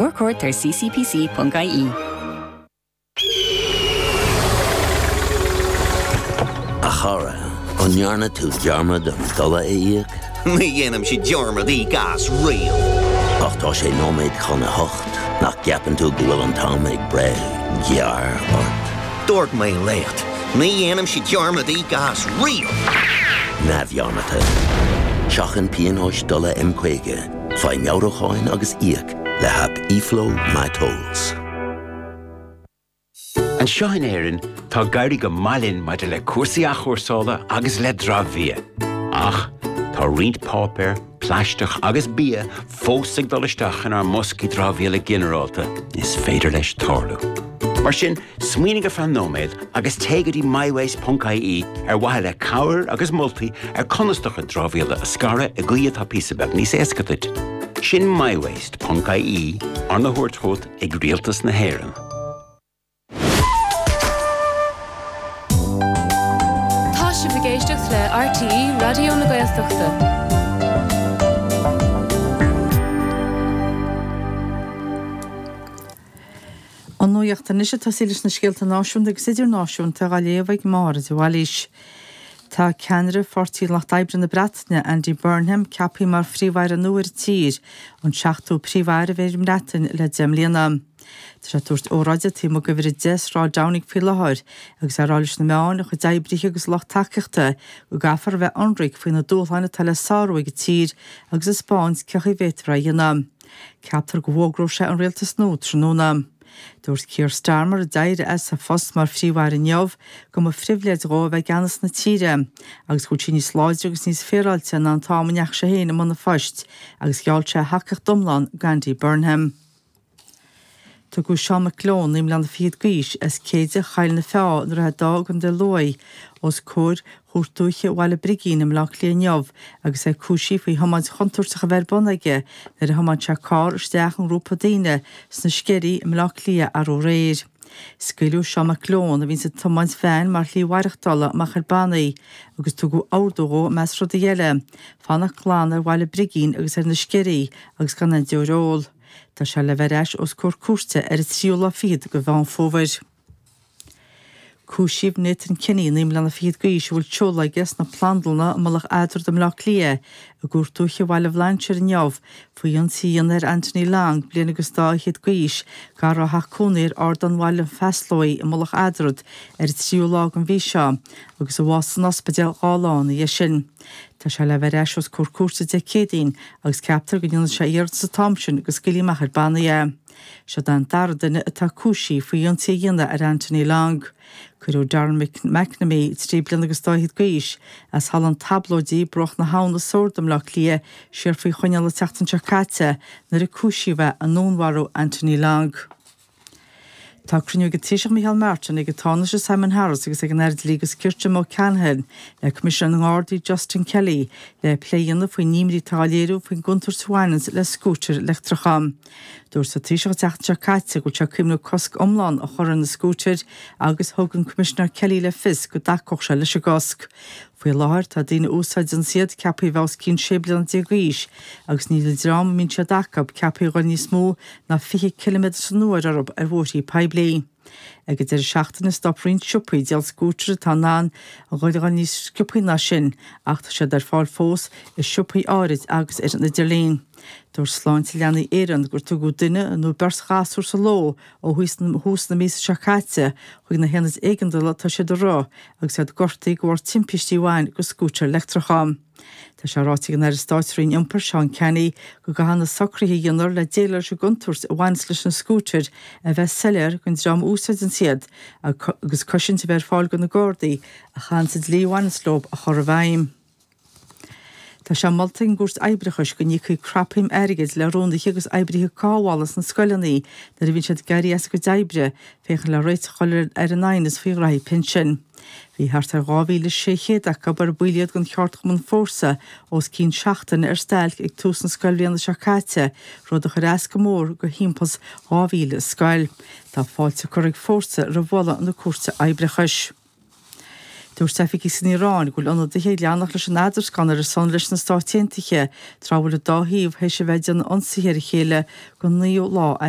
More court ar ccpc.ie. A chara, an ndearna tú dearmad an dola a íoc? Ní dhéanaimse dearmad íoc as riamh! Ach tá sé nóiméad chun a hocht, nach gceapann tú go bhfuil an t-am ag breith gearr ort? Dúirt mé leat, ní dhéanaimse dearmad íoc as riamh! Neamhdhearmadta. Seachain pionóis dola M50. Faigh meabhrúcháin agus íoc le haip eFlow My Tolls. Anseo in Éirinn, tá ag éirí go maith linn maidir le cúrsaí athchúrsála agus le dramhbhia. Ach, tá roinnt páipéar, plaisteach agus bia fós ag dul isteach inár mboscaí dramhaíola ginearálta is féidir leis tarlú. Mar sin, Smaoinigh ar feadh nóiméad agus téigh go dtí mywaste.ie ar mhaithe le cabhair agus moltaí ar conas do chuid dramhaíola a scaradh i gcaoi atá píosa beag níos éasca duit. Sin mywaste.ie, arna thabhairt chugat ag Rialtas na hÉireann. Tá sibh ag éisteacht le RTÉ Raidió na Gaeltachta. An nuacht anois ag tosaí leis na scéalta náisiúnta agus idirnáisiúnta á léamh ag Máire de Bhailís. Tá ceannaire Pháirtí an Lucht Oibre na Breataine, Andy Burnham, ceapthaí mar phríomh-aire nua ar an tír, an seachtú príomh-aire a bheidh ar an mBreatain le deich mbliana. Tá sé ag tabhairt óráide taobh amuigh d'Uimhir 10 Sráid Downing faoi láthair agus é ag rá leis na meáin, a chuid oibrithe agus a lucht tacaíochta go gcaithfear a bheith ionraic faoi na dúshláin atá le sárú ag an tír agus 'taispeáint cé acu a bhféadfar a dhéanamh'. Ceaptar go bhfógróidh sé an rialtas nua tráthnóna. Dúirt Keir Starmer, a d'éirigh as a phost mar phríomh-aire inniu, go mba phribhléid dhó a bheith i gceannas na tíre agus go bhfuil sí níos láidre agus níos féaráilte ná an t-am a ndeachaigh sé féin i mbun a phoist agus gheall sé a thacaíocht iomlán do Andy Burnham. Tugadh Seán Mac Leon naoi mbliana fichead d'aois as Céide Choill na Feá, i nDroichead Átha i gContae Lú os comhair Chúirt Dúiche Bhaile Brigín i mBleá Cliath inniu agus é cúisithe faoi thiomáint chontúirteach a bheith ar bun aige nuair a thiomáin sé carr isteach i ngrúpa daoine sna Sceirí i mBleá Cliath arú aréir. Scaoileadh Seán Mac Leon, a bhíonns ag tiomáint veain, mar shlí mhaireachtála, amach ar bannaí agus tugadh ordú dhó, i measc rudaí eile, fanacht glan ar Bhaile Brigín agus ar na Sceirí agus gan aon deoir a ól. Tá sé le bheith ar ais os comhair cúirte ar an tríú lá fichead de Mheán Fómhair. Cúisíodh Nathan Kinney, naoi mbliana fichead d'aois, a bhfuil seoladh aige sna Plandlanna i Mullach Eadrad i mBleá Cliath, i gCúirt Dúiche Bhaile Bhlainséir inniu faoi ionsaí a dhéanamh ar Anthony Long, bliain agus dá fhichead d'aois, gar dá theach cónaí ar Ardán Bhaile an Phasláigh i Mullach Eadrad ar an tríú lá den mhí seo agus a bhásaigh san ospidéal dhá lá ina dhiaidh sin. Tá sé le bheith ar ais os comhair cúirte Dé Céadaoin agus ceaptar go ndéanfaidh sé iarratas an t-am sin go scaoilfí amach ar bannaí é. Seo an dara duine atá cúisithe faoi ionsaí a dhéanamh ar Anthony Long. Cuireadh Darren McNamee, trí bliana agus dá fhichead d'aois, as Halla an Talbóidigh, Bruach na hAbhann i Sord i mBleá Cliath siar faoi choinneáil an tseachtain seo caite nuair a cúisíodh é i ndúnmharú Anthony Long. Tá cruinniú ag an Taoiseach Micheál Martin, ag an Tánaiste Simon Harris agus ag an Aire Dlí agus Cirt Jim O'Callaghan le Coimisinéir na nGardaí Justin Kelly le plé a dhéanamh faoin imní atá á léiriú faoin gcontúirt a bhaineanns le scútair leictreacha. Dúirt an Taoiseach an tseachtain seo caite go bhfuil sé ag cuimhneamh cosc iomlán a chur ar na scútair agus thug an Coimisinéir Kelly le fios go dtacódh sé leis an gcosc. Faoi láthair, tá daoine a úsáideanns iad ceaptha a bheith os cionn 16 bliana d'aois agus níl an dream a mbíonn siad acu ceaptha a ghoil níos mó ná 20 ciliméadar san uair orthu ar bhóithrí poiblí. Ag an deireadh seachtaine, stop roinnt siopaí ag díol scútair atá in ann a ghoil a dhul níos sciobthaí ná sin, ach tá siad ar fáil fós i siopaí áirid agus ar an idirlíon. Dúirt Sláinte Leanaí Éireann gur tugadh duine nó beirt ghasúr sa ló ó thús na míosa seo caite chuig na haonaid éigeandála atá siad a rith agus iad gortaithe de bharr timpistí a bhain do scútair leictreacha. Tá sé ráite ag an Aire Stáit sa Roinn Iompair, Seán Canney, go gcaithfidh na socruithe a dhéanfar le déileáil leis an gcontúirt a bhaineas leis na scútair a bheith soiléir don dream a úsáideanns iad agus cosaint a bheith ar fáil do na Gardaí a chaitheanns an dlí a bhaineas leo a chur i bhfeidhm. Tá sé molta ag an gCúirt Oibreachais go n-íocfaí cnapshuim airgid le rúnaithe agus oibrithe cothabhála sna scoileanna nuair a bhíonn siad ag éirí as a gcuid oibre féachaint le réiteach a chur ar an aighneas faoi ghnóthaí pinsin. Bhí thart ar 2,600 acu, ar baill iad den cheardchumann Fórsa, os cionn seachtaine ar stailc ag tús na scoilbhliana seo caite, rud a chuir as go mór do thimpeall is 2,000 scoil. Tá fáilte curtha ag Fórsa roimh mholadh na Cúirte Oibreachais. Dúirt oifigigh san Iaráin go bhfuil ionadaithe ag leanacht leis an eadruscáin ar a son leis na Stáit Aontaithe, tráth a bhfuil an dá thaobh théis a bheith ag déanamh ionsaithe ar a chéile don naoú lá as